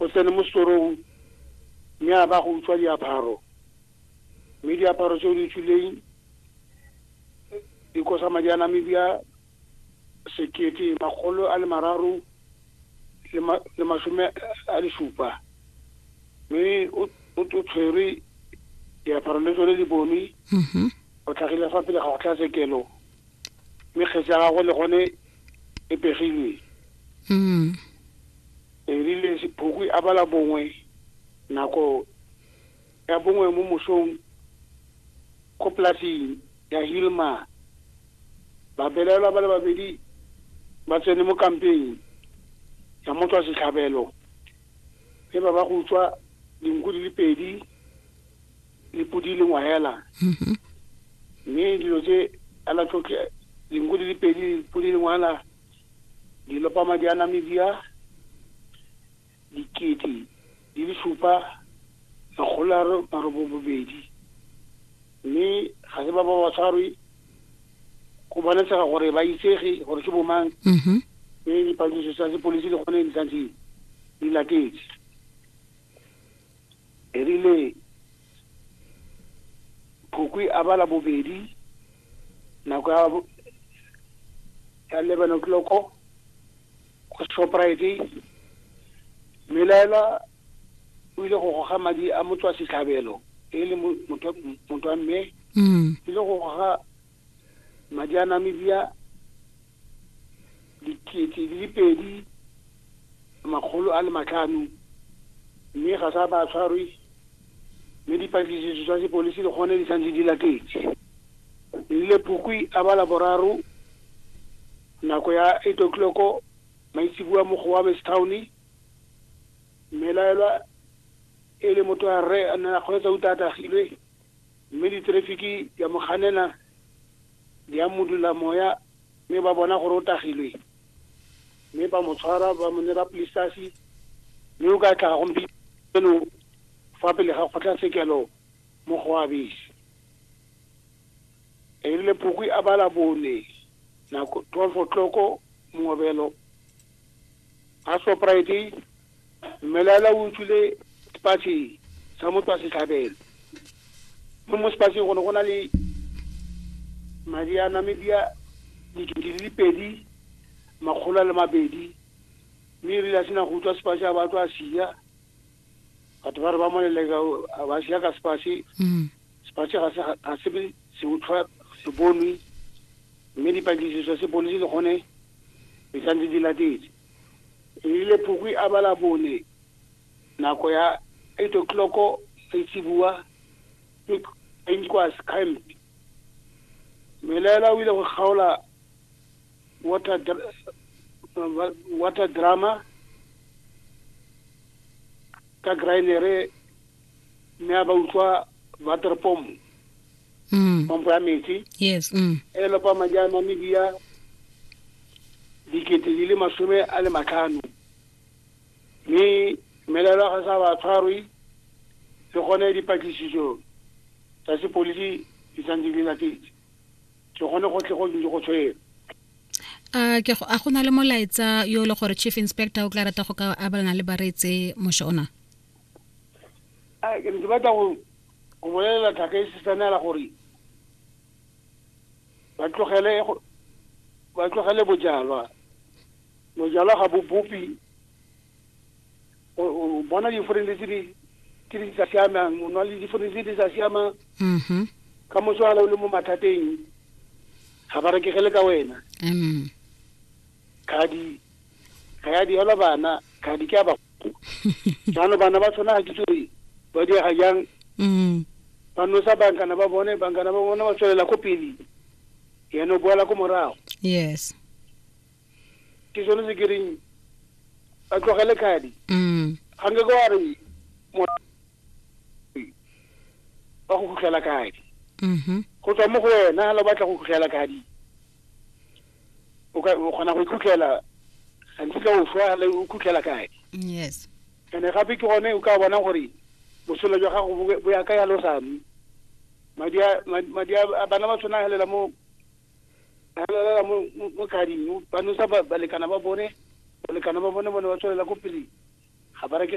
O tsene mo setorong mme a ba go utswa diaparo mme diaparo tse o di utswileng di kosa madi a Namibia sekete makgolo a le mararo le masome a le supa mme o tshwerwe diaparo le tsone di bonwe mm-hmm. o tlhagile fa pele ga go tlha sekelo mme kgetse ya gagwe le gone e pegilwe mm. E rile Sephokwi a bala bongwe nako ya bongwe mo mosong ko polasing ya Hilma, babelaelwa ba le babedi ba tsene mo kampeng ya motswa setlhabelo mme ba ba go utswa dinku di le pedi le podi le ngwahela mm-hmm. mme dilo tse ala tlotle dinku di le pedi podi le ngwahela Dilopama di a Namibia dikete di le supa makgolo a marobobobedi mme ga se ba ba ba tshwarwe go bonatshega gore ba itsege gore ke bomang mm-hmm. mme dipatlisiso tsa sepodisi le gone di santse di latetse e rile Phukwi a bala bobedi nako ya ya eleven o'clock ko shoprite mmelaela o ile go goga madi a motswa setlhabelo e le motho wa mme mm. ile go goga Madi a Namibia dikete di le pedi makgolo a le matlhano mme ga sa ba tshwarwe mme dipatlisiso tsa sepolisi le gone di santse di latetse. Lile Phukwi a ba Laboraro nako ya 8 o'clock maitseboa mo Gowames Town, mmelaelwa e le motho wa rre a ne a kgweetsa uta a tagilwe. Mme diterefiki di a mo ganela, di a modula moya, mme ba bona gore o tagilwe. Mme ba mo tshwara, ba mo nera polisitasi, mme o ka tla gompieno fa pele ga kgotlatshekelo mo go Abesi. Erile Phukwi a ba Labone, nako 12 o'clock, mongobelo, a Shoprite mmelaela o utswile sepatšhe sa motho wa setlhabelo mo mo sepatšheng go ne go na le madi a namibia dikete di le pedi makgolo a le mabedi mme e rile a sena go utswa sepatšhe a batlo a sia batho ba re ba moleleka ba sia ka sepasi mm. sepasi ga se ga se be se utlwa se bonwe mme dipatlisiso se polisi le gone di santse di latetse e rile phukwi a bala bone nako ya eight o'clock setsibuwa ke enkwas camp melela o ile go kgaola What a, dr- uh, what- what a drama ka grainere mme a ba utlwa water pomp Mm. pompo ya metsi Yes. Mm. e le lopa madi a namibia dikete di le masome a le matlhano mme melelo ya ga sa ba tshwarwe le gone dipatlisiso tsa sepodisi di santse di latetse ke gone go tle go ntse go tshwere a ke a go na le molaetsa yo le gore chief inspector o tla rata go ka abelana le bareetse mosho ona a ke ntse batla go go bolelela thaka e sesanela gore ba tlogele ba tlogele bojalwa bojalwa ga bo bopi o bona diforense tse di tse di sa siamang o nwa le diforense tse di sa siamang mm-hmm. ka motswala o le mo mathateng ga ba rekegele ka wena mm. khadi ga ya diela bana khadi ke ya ba jaanong bana ba tshwana ga ke tsore ba diega jang mm. ba nosa bankana ba bone bankana ba bone ba tswelela ko pele yena o boela ko morago yes ke sone se ke reng a tlogele khadi mm. ga nke ka wa re ba go khutlela khadi mm-hmm. go tswa mo go wena ga lo batla go khutlela khadi o kgona go ikhutlela gantsi ka o swa le o khutlela khadi yes ene gape ke gone o ka bona gore botshelo jwa gago bo ya ka ya losame madi a bana ba tshwana helela mo a lalela mo mo- mo gading ba nosa ba- balekana ba bone balekana ba bone bone ba tswelela ko pele ga ba reke